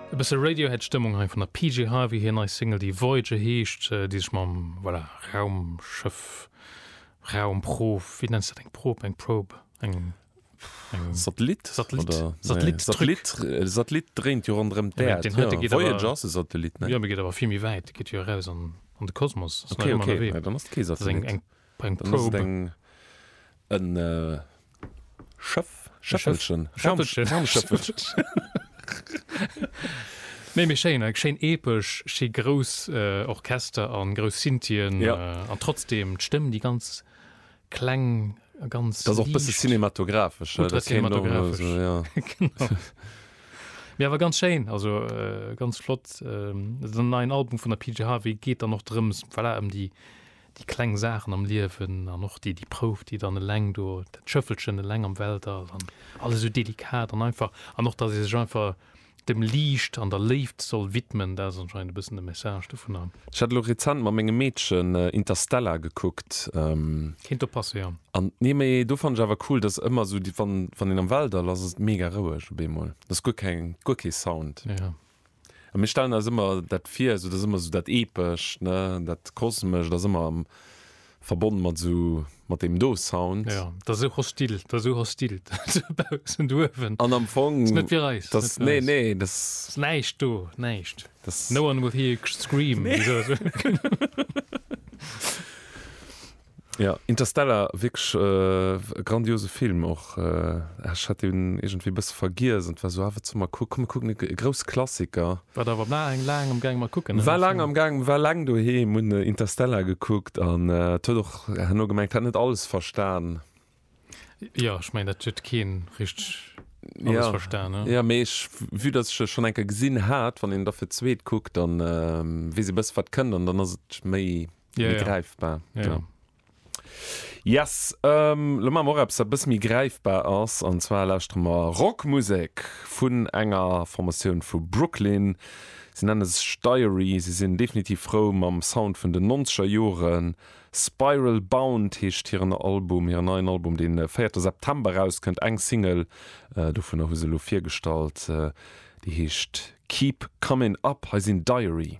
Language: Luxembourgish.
E bësse Radiohead Stëmmung hei vun der PJ Harvey, hir nei Single déi Voyager heescht, déi sech mam, voilà, Raumschëff, Raumprof, wéi nenns de dat, eng Prob, eng Probe, eng, eng. Satellit? Satellit, Satellit, Truc. E Satellit dréint jo ronderëm d'Äerd. Den heite geet awer. Voyager ass e Satellit, ne? Jo, mee geet awer vill méi wäit, geet jo eraus an de Kosmos, ass nach ëmmer ënnerwee. Okay, okay, dann ass et kee Satellit. Brengt Probe. Dann ass et en Schëff, Schëffelchen, Schëffelchen. Raumschëffelchen. Méi, méi schéin, eng schéin epesch, schi grouss Orchester a grouss Synthien an trotzdeem d'Stëmm, déi ganz kleng a ganz liicht. Dat ass och e bësse cinematographesch. Ultra cinematographesch, jo. Genau. Mee awer ganz schéin, also ganz flott. Den neien Album vun der PJ Harvey geet dann och drëms, voilà, ëm déi, Déi kleng Saachen am Liewen an och déi, déi Prouf, déi dann eleng do, dat Schëffelchen eleng am Weltall an alles esou delikat an einfach. An och, dass ee sech einfach dem Liicht an der Léift soll widmen, dat ass anscheinend e bëssen de Message dovunner. Ech hat elo rezent mat mengem Meedchen Interstellar gekuckt. Kéint do passen, jo. An, nee, mee do fannen ech awer cool, dass ëmmer esou déi, wann, wann een am Weltall ass, ass et mega roueg op eemol. Ass guer keng, guer kee Sound. Jo. A mir stellen eis ëmmer dat vir, esou dat ass ëmmer esou dat Epescht, ne, dat Kosmescht ass ëmmer am, verbonne mat esou, mat deem do Sound. Ja, dat ass esou hostil, dat ass esou hostil, esou baussent uewen. An am Fong. Dat ass net fir eis. Dat ass, nee, nee, dat. Dat ass näischt do, näischt. No one will hear you scream. Nee. Ja, Interstellar, wierklech e grandiose Film och. Ech hat deen iergendwéi e bësse vergiess an et war esou, ah, wat solle mer kucken? Komm, mir kucken e grouss Klassiker. War der awer laang, laang am Gaang mat kucken, ne? War laang am Gaang, war laang doheem, hunn Interstellar gekuckt an et huet och herno gemengt, hat net alles verstan. Jo, ech mengen dat huet kee richteg alles verstan. Jo, mee ech, vue datt ech e schonn eng Kéier gesinn hat, wann een da fir d'zweet kuckt, da weess ee bësse wat kënnt an dann ass et méi gräifbar. Yes, lo maache mer och eppes wat e bësse méi gräifbar ass an zwar lauschtere mer Rockmusek vun enger Formatioun vu Brooklyn. Si nenne sech Diary, si sinn definitiv frou mam Sound vun den nonzeger Joren Spiral Bound heescht hiren Album, hiren neien Album, dee véierte September erauskënnt. Eng Single dovunner hu se elo virgestallt, déi heescht Keep Comin' Up. Hei sinn Diary.